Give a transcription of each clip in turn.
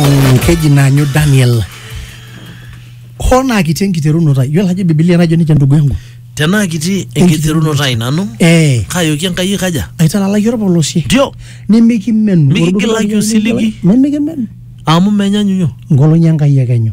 Mm, keji naanyu daniel hoo naa kiti enkiterunoto ai yiolo ajo bibilia najo nejia ndugu yangu tenaa kiti enkiterunoto ai nanu eh kaayoki enkai kaja aitalalaki orpolosie ndio nimikimenu Mikigilaki osiligi. nimikimenu amu menyanyunyo ngolong'i enkai ekenyu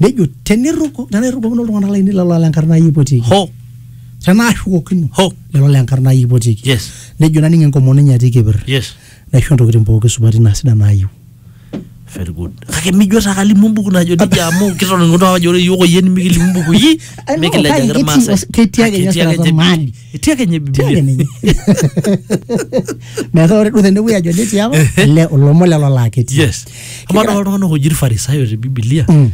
nejo tenirruku tenaa irrukokino iltung'anak lainei lelo le nkarna ai ipotieki ho tenaa ashukokino ho lelo le nkarna ai ipotieki yes nejo naning enkomono enye atii kepir yes naisho intokitin pooki supati naa sidan naayieu very good kake mijo taa kalimu embuku najo nejia amu kitoning'uto ajo ore iyiook oyie nimikilimu imbukui I know, kake mikilejaki ketii irmaasai os- ketii ake ninye Ketii ake osirata ninche mali etii ake ninye Tia ake bibilia ninye. metaa ore duo tenewuei ajo netii apa le olomon lelo laa ketii yes amaa Kegira- dol iltung'anak oji irfarisayo te bibilia Mm.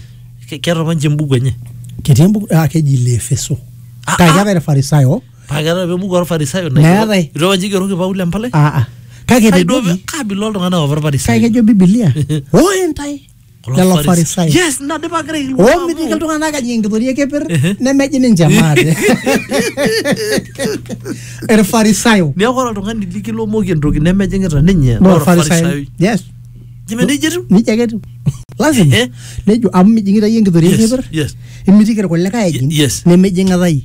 ke- keeta apa ninche embuku enye ketii embuku ah, keji ile efeso Ah, kake ah. keetae irfarisayo paa keeta apa embuku orfarisayo Meetae. itu apa ninche igeroki paulo empalai ah, ah. kake Kai duo- etejoki kaabila oltung'anak apa kake irfarisayo ejo bibilia ore ntae Kulo lelo Faris- farisai yes nadipa kira ilwa amu- omitiki iltung'anak ajing enkitoria ekeper Ehe. nemeji ninche maate irfarisayo neeku ore oltung'ani likilomoki entoki nemejing'ita ninye naa orfarisai orfarisai yes jime nejia etiu nijia ake etiu lazima Eh? nejo amu mijing'ita yie enkitoria yes ekeper yes imitiki irkulikae ejing Ye- yes. nemejing'ita yie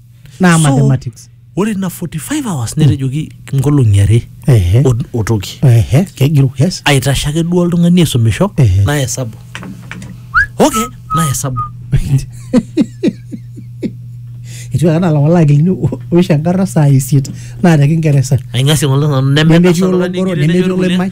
naa So, mathematics ore ina 45 hours netejoki nkolong'i are Ehe. o- otoki ehe kegiru yes aitashe ake duo oltung'ani aisumisho Ehe. naa hesabu okay naa hesabu etiu ake anaa lawala akilini oisho enkarna saa isiet naa te kingeresa aing'asie ng'ole nanu nemetii nemetasha oltung'ani ologoro ng'iri nemetii nemetii oloimai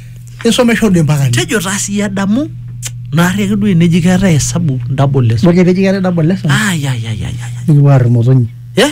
isomesha ode mpaka ni tejo taa siyie adamu naarri ake duo eneji keetae hesabu double lesson ore keteji keetae double lesson ayayayaya nikipuo aar imotonyi eh